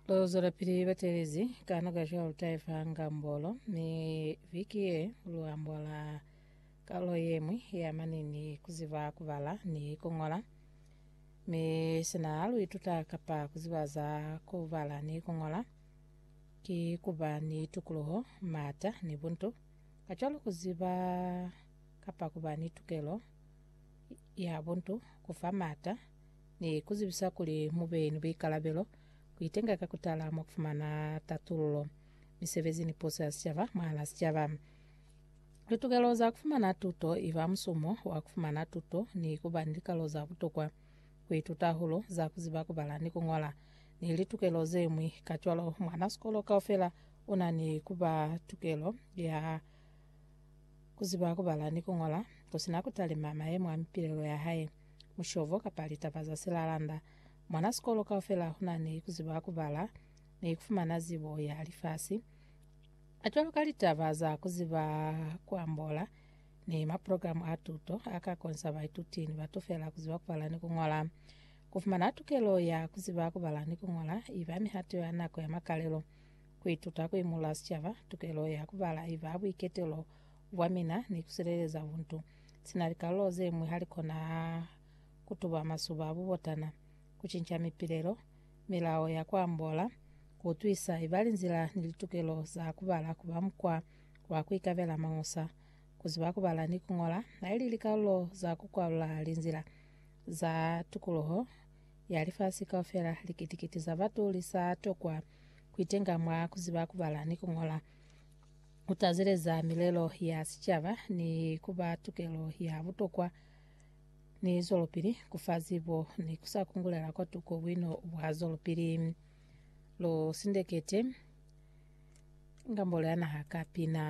Lozwelapili batelezi ka noka cwalo taifa ngambolo ni viki ye luambola kalo yemwi ya manini kuziba kubala ni kungola mi sina luituta kapa kuziba za kubala ni kungola ki kuba ni tukuluho mata ni buntu kacwalo kuziba kapa kuba ni tukelo ya buntu kufa mata Ni ku zibisa kuli mu be ni buikalabelo ku itenga ka ku tala mwa ku fumana tatululo misebezi ni puso ya sicaba mwahal'a sicaba. Litokelo za ku fumana tuto i ba musumo wa ku fumana tuto ni ku ba ni likalo za butokwa, ku ituta hahulu za ku ziba ku bala ni ku ñola, ni litukelo ze ñwi. Kacwalo, mwan'a sikolo kaufela u na ni ku ba tukelo ya ku ziba ku bala ni ku ñola, ku si na ku talima mayemo a mipilelo ya hae. mushobo kapa litaba za silalanda. Mwana sikolo kaufela huna ni kuziba kubala ni kufumana zibo ya lifasi, kacwalo ka litaba za kuziba kuambola ni maprogramu a tuto a ka konsa baituti ni batu fela kuziba kubala ni kungola. Kufumana tukelo ya kuziba kubala ni kungola iba mihato ya nako ya makalelo. Kuituta kuimula sicaba tukelo ya kubala iba buiketelo bwa mina ni kusileleza buntu. sina likalulo zeñwi halikona kutuba masuba a bubotana, kucinca mipilelo, milao ya kuambola, kuutwisa ibali nzila ni litukelo za kubala kuba mukwa wa kuikabela mañusa, kuziba kubala ni kuñola, haili likalulo za kukwalula linzila za tukuluho ya lifasi kaufela. Likiti-kiti za batu lisa tokwa kuitenga mwa kuziba kubala ni kuñola. ku tazeleza milelo ya sicaba ni ku ba tukelo ya butokwa ni zwelopili, ku fa zibo ni ku sa kungulela kwa tuko buino bwa zwelopili. Lu sindekete Ngambolo ya Naha ka pina.